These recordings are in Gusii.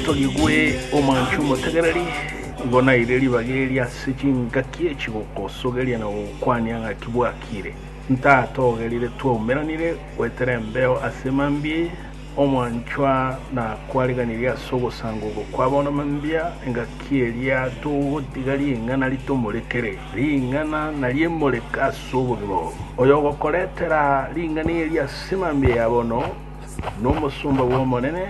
Togigwe omoancha omotegereri, nigo naeire ribaga eria ase chingaki echi gokosogeria na gokokwania ng'a ki bwakire. Ntatogerire twaumeranire goetera embeo ase mambia omoanchwa na kwareganirie ase ogosanga oko kwa bono mambia engaki eria togotiga ring'ana ritomorekere. Ring'ana nariemoreke ase obogima obo. Oyogokoretera ring'ana eria ase mambia ya bono nomosomba bw'Omonene,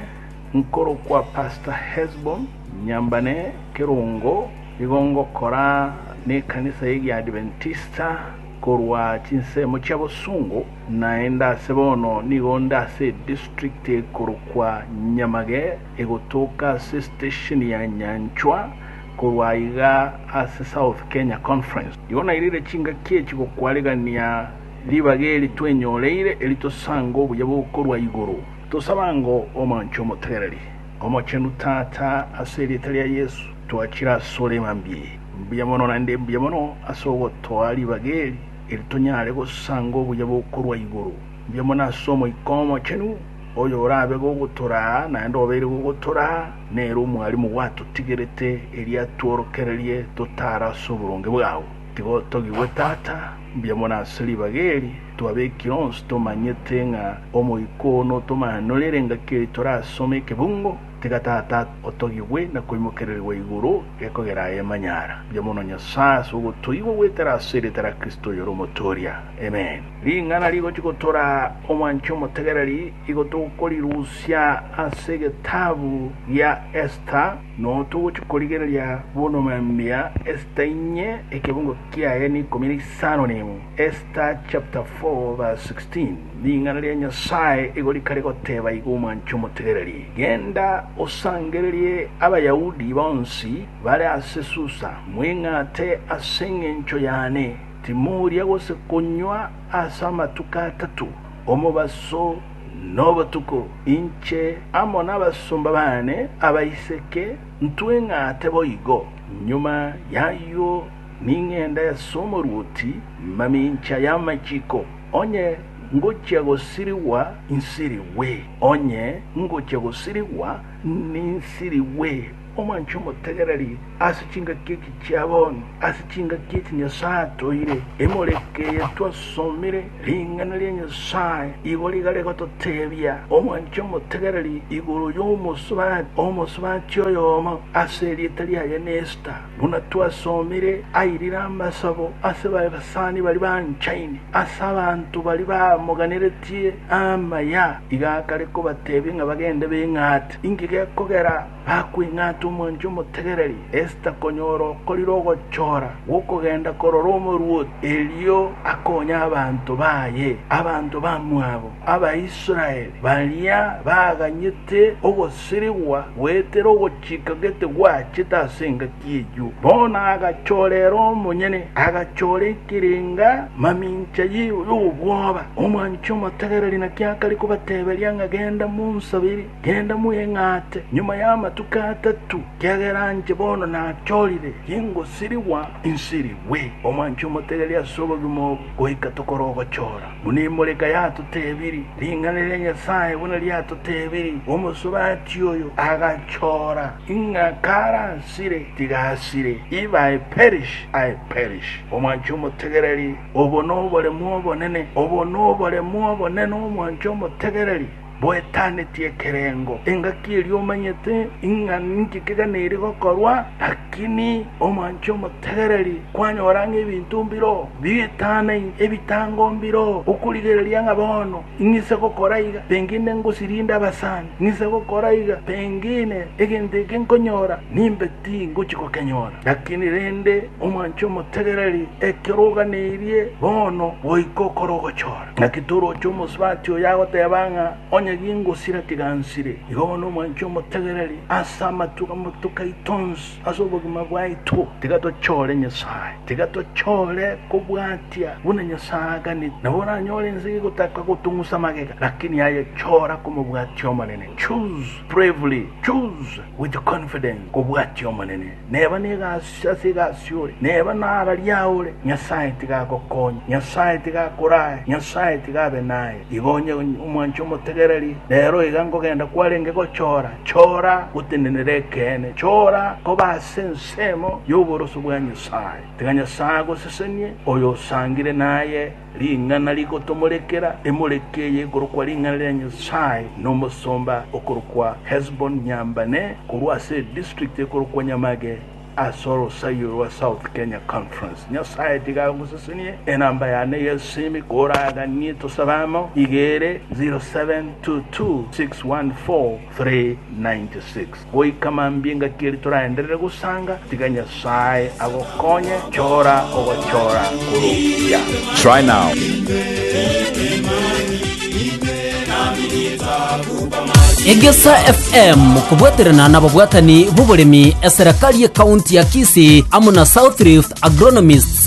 Nkorokwa Pastor Hesbon Nyambane Kerongo nigo ngokora nekanisa ye giadventista korwa chinsemo chia bosungu naende ase bono nigo nde ase edistrict ekorokwa Nyamage egotoka ase estesheni ya Nyanchwa korwa aiga ase South Kenya Conference nigo nairire chingaki echi gokwaregania ribaga eri twenyoreire eri tosange obuya bokorwa igoro. Tosaba ng'a omanche omotegereri omochenu, Tata, ase erieta ria Yesu, twachire asore mambie mbuya mono naende mbuya mono ase ogotoa ribaga eri, eri tonyare gosanga obuya bokorwa igoro mbuya mono ase Omoika Omochenu, oyo orabe gogotoraa naende obeire gogotoraa, nere omwarimu gwatotigerete, erio atworokererie totare ase oboronge bwao. Tiga otogigwe, Tata, mbuya mono ase ribaga eri. Twabekire onsi tomanyete ng'a omoika oo notomanorere engaki eye torasome ekebungo, tiga Tata otogigwe na koimokererigwa igoro gekogera aye emanyara. Mbuya mono Nyasae ase ogotoigwa goetera ase erieta ria Kristo oyore omotooria. Amen. Ring'ana rigochi gotora omwancha omotegereri igo togokorirusia ase egetabu gia Esta, noyo togochi korigereria bono mambia Esta inye ekebungo kiaye na ikomi na isano na emo. Esta chapter 4 verse 16 Ring'ana ria Nyasae igo rika rigoteba iga omwanche omotegereri, Genda osangererie Abayahudi bonsi bare ase Susa, mweng'ate ase engencho yane, timoria gose konywa ase amatuko atato, omobaso na obotuko, inche amo nabasomba bane abaiseke ntweng'ate boigo. Nyuma y'ayio Ning'ende as'omoruoti mamincha y'amachiko, onye ngochia gosirigwa nsirigwe, onye ngochia gosirigwa ninsirigwe. Omwancha omotegereri ase chingaki echi chia bono, ase chingaki echi Nyasae atoire, emoreke eye twasomire, ring'ana ria Nyasae igo riga rigototebia, Omwancha omotegereri igoro y'omosubati, omosubachi oyomo ase erieta riaye n'Esta. Buna twasomire, airire amasabo ase baibasani baria banchaine ase abanto baria bamoganeretie amaya. Iga akare kobatebia ng'a bagende beng'ate. Inki gekogera bakweng'ata omwancha omotegereri? Esta konyora okorire ogochora gw'okogenda korora omoruoti, erio akonye abanto baye, abanto bamwabo Abaisraeli, baria baganyete ogosaria. Sirigwa goetera ogochika gete gwachete ase engaki eyio. Bono agachora ere omonyene, agachora ekerenga mamincha ye y'obwoba. Omwanchi omotegereri naki akare kobateberia ng'a genda monsabere, genda mweng'ate. Nyuma y'amatuko atato, kiagera anche bono nachorire, ingosirigwa insirigwe. Omwanchi omotegereri ase obogima obo, goika tokore ogochora. Buna Imoleka yatotebirie, ring'ana ria Nyasae buna riatotebirie, Omosubaati oyo agachora, ng'a karasire, tigasire, if I perish, I perish. Omwanche omotegereri, obo noboremu obonene, obo noboremu obonene, omwanche omotegereri. Boetaneti ekerengo, engaki eria omanyete ing'a ninki keganeiri gokorwa, lakini omwanche omotegereri kwanyora ng'a ebinto mbiro bietane ebitango mbiro, okorigereria ng'a bono ing'ise gokora iga, pengine ngosirinde abasani, ng'ise gokora iga, pengine egento eke nkonyora nimbe tingochi gokenyora. Lakini rende omwanche omotegereri ekero oganeirie bono goika okore ogochora. Naki toroche omosubati oyo agoteba ng'a onye gingosira tiga nsire. Igo bono omwanchi omotegereri ase amatuko amatuko aito onsi ase obogima bwaito, tiga tochore Nyasae. Tiga tochore kobwatia buna Nyasae aganete. Nabo oranyore ense gegotaka gotong'usa magega, lakini aye chora komobwatia Omonene. Choose bravely, choose with confidence kobwatia Omonene. Neba negasi. Sase egasi ore, neba nararie aye ore, Nyasae tiga agokonye, Nyasae tiga akorae, Nyasae tiga abe naye. Igo onye omwanche omotegereri, rero iga nkogenda kwarenge gochora, chora gotenenera ekeene, chora koba ase ensemo y'oboroso bwa Nyasae. Tiga Nyasae agosesenie, oyo osangire naye. Ring'ana rigotomorekera emoreke eye ekorokwa Ring'ana ria Nyasae na omosomba okorokwa Hesbon Nyambane korwa ase edistrict ekorokwa Nyamage ase orosaio rwa South Kenya Conference. Nyasae tiga agosesenie enamba yane y'esimi koraganie tosabe amo, igere, 0722614396. Goika mambia ingaki eri toraenderere gosanga, tiga Nyasae agokonye, chora ogochora kor'okuya. Try now. Egesa FM kobwaterana nababwatani b'oboremi eserekari y'ekaunti ya Kisii amo na South Rift Agronomists